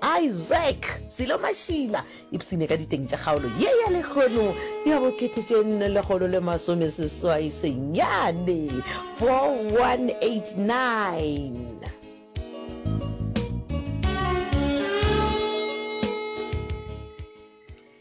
Isaac Selo Mashila ipsine ka diteng tša kgaolo ye ya lehono ya bokete tše nne lekgolo le masome seswai senyane 4189.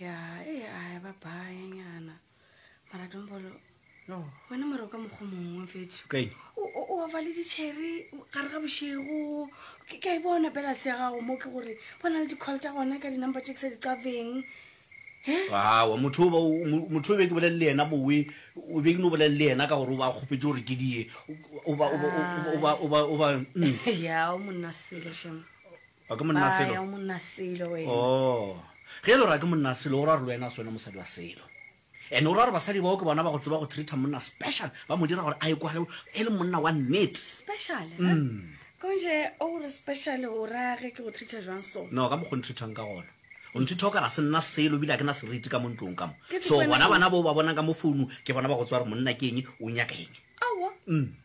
ya e a e ba baye nyana mara dombolo no wena mara o ka mokgwa mongwe fetso o ofa le ditšheri gare ga bošego ke ka e bona pela se ya gago mo ke gore bona le di-call tsa gona ka di-number tse ke sa di qabeng awa motho o be ke bolelele yena bowe o be ke no bolelele yena ka gore o ba kgopetse gore ke die o ba mm. ya o monna selo shemo O ke monna selo? Baya o monna selo wena. Oh. Ge e le gore a ke monna selo o ra gore le wena a se wena mosadi wa selo. Ene o ra gore basadi bao ke bona ba go tseba go treater monna special ba mo dira gore a ekwale e le monna wa nnete. Special? Mm. Konje o gore special o ra ge ke go treater jwang so? No ka mokgo ntreatang ka gona. O ntreater ka ra se nna selo bile a ke na seriti ka mo ntlong ka mo. So bona bana bo ba bona ka mo founu ke bona ba go tswa re monna ke eng o nyaka eng. Aowa. Mm.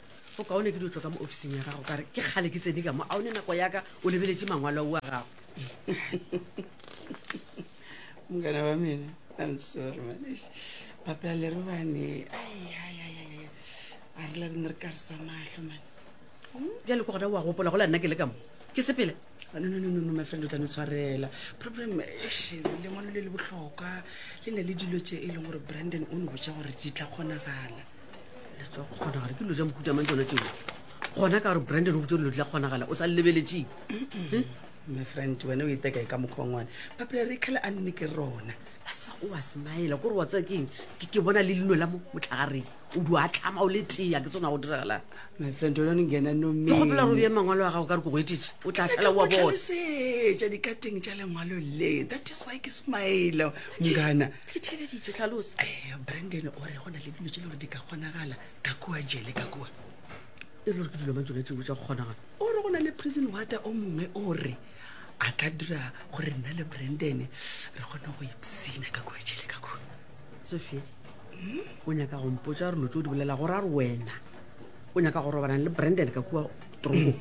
o kaone ke di tlo ka mo officing ya gago kare ke kgale ke tsene ka mo a o ne nako yaka o lebeletse mangwalo wa gago mokana wa mena i'm sorry manesh papela le re bane a re labene re karisa matlho mane bjale ko gona wa gopola go la nna ke le ka mo ke sepele ah, no no no no my friend o tlane tshwarela problem lengwalo le le botlhokwa le ne le dilo tse e leng gore brandon o ne botsa gore di tla kgonagala kgonagala ke dilo tsa mohuta mang tsona tseo gona ka gore brandon o botse dilo tla kgonagala o sa lebeletseng my friend wena o iteka e ka mokgwangwane papela re kgale a nne ke rona a se ba o wa semaela kore wa tsaya keng ke bona le leno la mo motlhagareng o di a tlama o le tea ke tsona go diragalang my friend wena ne ngena no me ke gopela go bea mangwalo a gago ka re ke go etetse o tla tlhala wa bonatlhalosetša dikateng tša lengwalo le that is why ke semaela ngana ke theleditše tlhalosa eh, brandon o re go na le dilo tse le gore di ka kgonagala ka kua jele ka kua e le gore ke dilo mang tsone tseo tsa go kgonagala o re go na le prison wata o mongwe o re a ka dira gore nna le brandon re kgone go ipsina ka kua jele ka kua sophia o nyaka go mpotsa dilo tse o di bolela gore a re wena o nyaka go robanang le brandon ka kua true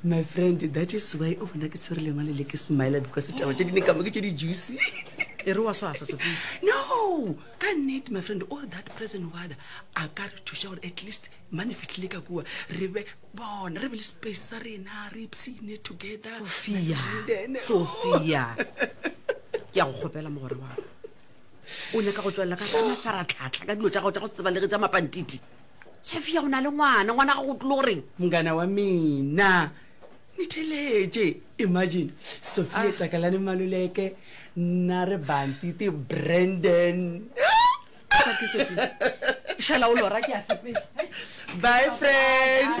my friend that is why o bona ke tshwere lengwa le le ke smile because taba tse di ne ka mo ke tse di juicy e re wa swaswa sofi no ka nnete my friend all that present wada a ka re thuša gore at least mane fitlhile ka kua re be bona re be le space sa rena re ipsine together sophia sophia ke ya go kgopela mogore waka o nyaka go tswelela ka ka mafaratlhatlha ka dilo tsa gago tsa go se tsebalege tsa mapantiti sofia o na le ngwana ngwana ga go tlile go reng mongana wa mina ni theletše imagine sofia ah. takalane maloleke nna re bantite brandon šala o lora ke a sepela bye friend